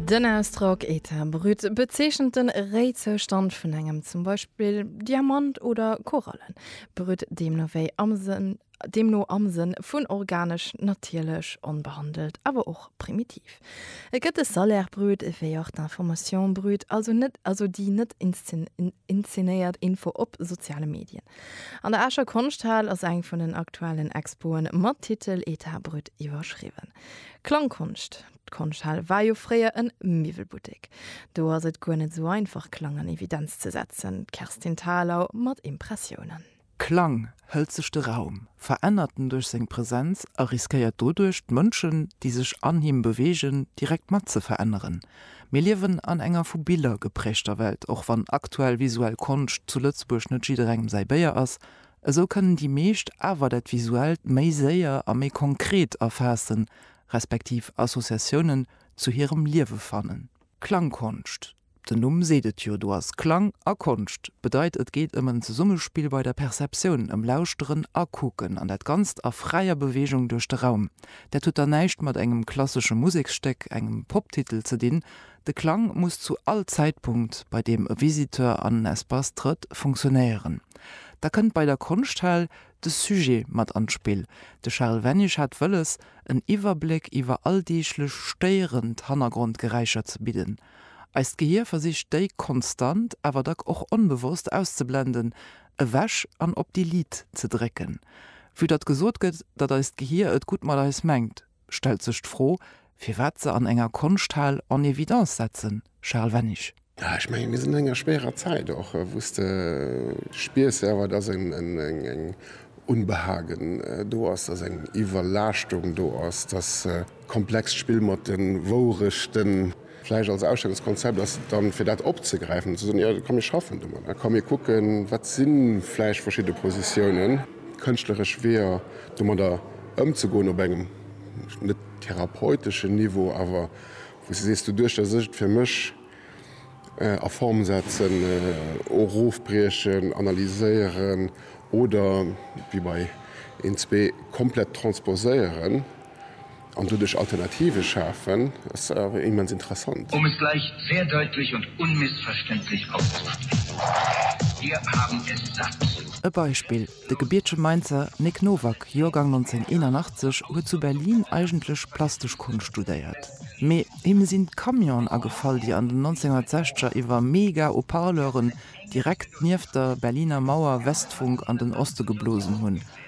Den Ausdrock état brut bezeechent de Réizoustand vun engem, zum Beispill Diamant oder Koralle, brut deemno wéi am Sënn, deemno am Sënn vun organesch, natierlech, onbehandelt, awer och primitiv. Et gëtt de Salaire brut wéi och d'Information brute, also net, also déi net inzenéiert Info op soziale Medien. An der Escher Konschthal ass eng vun den aktuellen Expoen mat Titel état brut iwwerschriwwen. Klangkonscht D'Konschthal war jo fréier en Miwwelbuttek. Do ass et guer net sou einfach Klang an Evidenz ze setzen. D'Kerstin Thalau mat Impressiounen. Klang hëlt sech de Raum, verännert en duerch seng Presenz a riskéiert doduerch d'Mënschen, déi sech an him beweegen, direkt mat ze veränneren. Mir liewen an enger vu Biller geprägter Welt, och wann aktuell visuell Konscht zu Lëtzebuerg net jidderengem säi Béier ass, Esou kënnen déi meescht awer dat Visuellt méi séier a méi konkret erfaassen, respektiv Associatiounen zu hirem Liewe fannen. Klangkonscht, den Numm seet et jo, do ass Klang a Konscht. Bedeit et geet ëm en Zesummespill bei der Perceptioun, ëm Lauschteren a Kucken, an dat Ganzt a fräier Beweegung duerch de Raum. Dat huet dann näischt mat engem klassesche Museksstéck, engem Poptitel ze dinn, De Klang muss zu all Zäitpunkt, bei deem e Visiteur an en Espace trëtt, funktionéieren. Da kënnt bei der Konschthal de Sujet mat an d'Spill. De Charel Wennisch hat wëlles, en Iwwerbléck iwwer alldeeglech stéierend Hannergrondgeräischer ze bidden. Eist Gehier versicht déi konstant, awer dack och onbewosst auszeblenden, ewech an op Delete ze drécken. Vue datt gesot gëtt, datt eist Gehier et gutt mat eis mengt. stellt sech d'Fro, firwat se an enger Konschthal en évidence setzen, Charel Wennig. Jo, ech menge mir sinn an enger schwéierer Zäit och, wou s de spiers selwer, datt eng Unbehagen do ass, datt eng Iwwerlaaschtung do ass, datt komplex Spill mat de Wourechten, Vläicht als Ausstellungskonzept ass et dann, fir dat opzegräifen an ze soen, jo, komm, mir schaffen domat a komm, mir kucken, wat si vläicht verschidde Positiounen, kënschtleresch Weeër domadder ëmzegoen op engem net therapeuteschen Niveau, awer wou s de sees, doduerch datt ech et fir mech a Form setzen, erofbriechen, analyséieren oder, wéi bei een, zwee, komplett transposéieren. an doduerch Alternative schafen, ass awer immens interessant. Um es gleich sehr deutlich und unmissverständlich auszusprechen, Wir haben es satt! E Beispill, De gebiertege Mainzer Nic Nowak, Joergang 1981, huet zu Berlin eigentlech plastesch Konscht studéiert, mee him sinn d'Camionen agefall, déi an den 1960er iwwer Mega-Haut-Parleuren direkt nieft der Berliner Mauer Westfunk an den Oste geblosen hunn,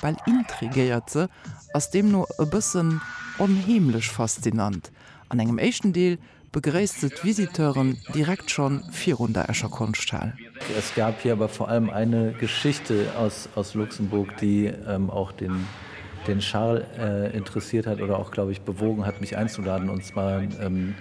bal intrigéiert se, ass deemno e bëssen onheemlech faszinant. An engem éischten Deel begréisst se d'Visiteuren direkt schonn virun der Escher Konschthal. Es gab hier aber vor allem eine Geschichte aus aus Luxemburg, die auch den den Charles interessiert hat oder auch, glaube ich, bewogen hat, mich einzuladen, und zwar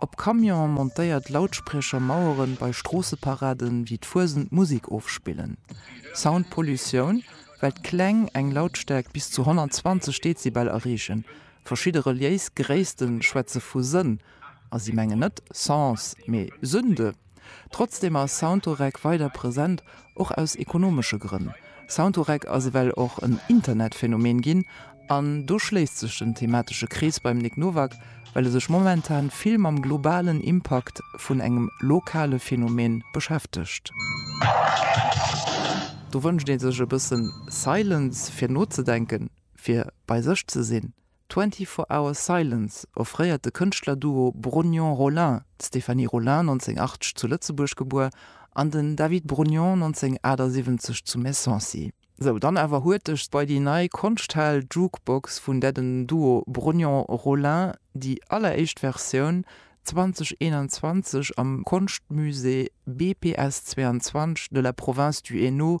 Op Camion montéiert Lautspriecher Maueren bei Stroosseparaden wéi d'Fuesent Musik ofspillen. Soundpollutioun, well d'Kläng eng Lautstäerkt bis zu 120 Dezibel erreechen. Verschidde reliéis Gréissten schwätze vu Sënn, a si mengen net Sens, mee Sünde. Trotzdeem ass Soundorec weider present, och aus ekonomesche Grënn. Soundorec ass ewell och en Internetphänomen ginn, an do schléisst sech den thematesche Krees beim Nic Nowak, well e sech momentan vill mam globalen Impakt vun engem lokale Phänomen beschäftegt. Do wënscht ee sech e bëssen Silence, fir nozedenken, fir bei sech ze sinn. 24 Hours Silence offréiert de Kënschtlerduo Brognon-Rollin, d'Stéphanie Rollin, 1980 zu Lëtzebuerg gebuer, an den David Brognon, 1978 zu Messancy. Sou, dann awer huerteg bei déi nei Konschthal Jukebox vun där den Duo Brognon-Rollin déi alleréischt Versioun 2021 am Konschtmusée BPS 22 de la Province du Hainaut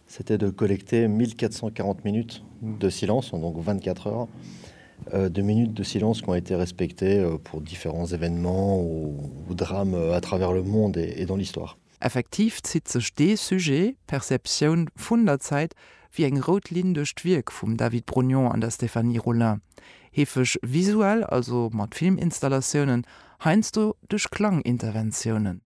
C'était de collecter 1.440 minutes de silence en donc 24 heures de minutes de silence qui ont été respectées pour différents événements ou drames à travers le monde et dans l'histoire. Effektiv zitt sech dee Sujet, d'Perceptioun vun der Zäit, wéi eng rout Linn duerch d'Wierk vum David Brognon an der Stéphanie Rollin. Heefeg visuell, also mat Filminstallatioune, heiansdo duerch Klanginterventiounen.